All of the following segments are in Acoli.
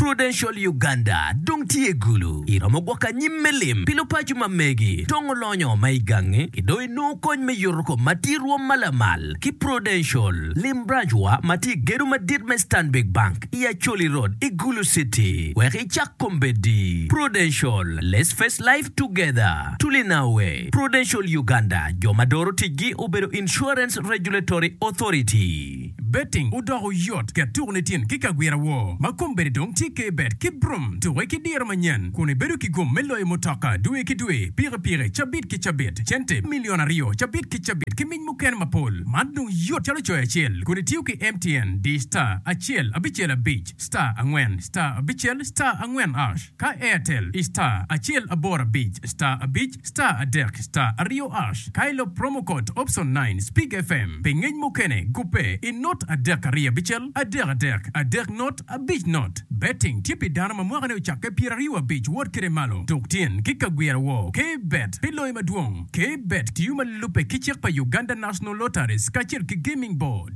Prudential Uganda dong tye gulu. Iromo gwoko anyim me lim pi lupaco ma megi dong olonyo ma i gangi ki dong inongo kony me yuto kommati rwom ma lamal ki Prudential. Lim branch wa ma tye i gedo madit me Stanbic Bank i Acholi Road i Gulu City wek icak kombeddi. Prudential, Let's face life together. Tuli now we. Prudential Uganda, jo ma doro ticgi obedo Insurance Regulatory Authority. Betting odoko yot ket tuku nitin ki kagwira woo ma kom bene dong tye ke bet ki brum tuke ki diro manyen kun ibedo ki gum me loyo mutoka dwe ki dwe, piki piki, cabit ki cabit, cente milion aryo cabit ki cabit ki mic mukene mapol. Man dong yot calo coyo acel kun itiyo ki MTN di star acel abicel abic star angwen star abicel star angwen ash. Ka Airtel i star acel aboro abic star abic star adek star aryo ash ka ilo promo code option nine speak FM pi ngec mukene gubbe i not adek ariyo abicel adek adek adek not abic not Betting tye pi dano ma mwakane ocakke pyeraryo abic wot kede malo tuk tyen ki ka gwira woo K Bet pi loyo madwong K Bet tiyo ma lubbe ki cik pa Uganda National Lotteries kacel ki Gaming Board.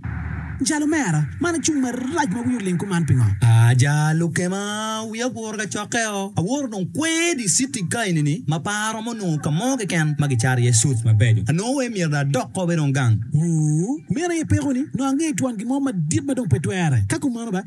Jalo mera, man acung marac ma wiyi oling kuman pingo? Aja lukema, wiya oporo ka cokkeo. Awoto dong kwer i citi ka enini ma pe aromo nongo ka mo keken ma gicato iye suits mabeco. Anongo wai myero dong adok kop i rong gang. Ooh, meno aye pekoni, nongo angeyo twon gin mo madit ma dong pe twere. Ka kumeno ba,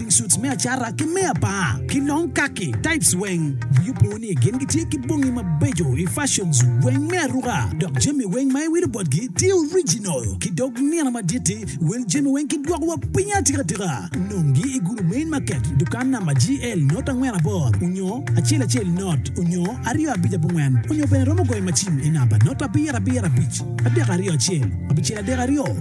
Suits me acata ki me apar ki long kaki types weng wiyi opo ni gin gitye ki bongi mabeco i fashions weng me aruka dok jami weng ma iwilo botgi tye original ki dog nino madit-ti. Wil jami weng ki dwoko wa pinyi atika tika. Nongi i gudo Main Market, dukan namba GL not angwen abor onyo acel acel not onyo aryo abic abongwen onyo bene romo goyo macin i namba not abiro abiro abic adek aryo acel abicel adek aryo.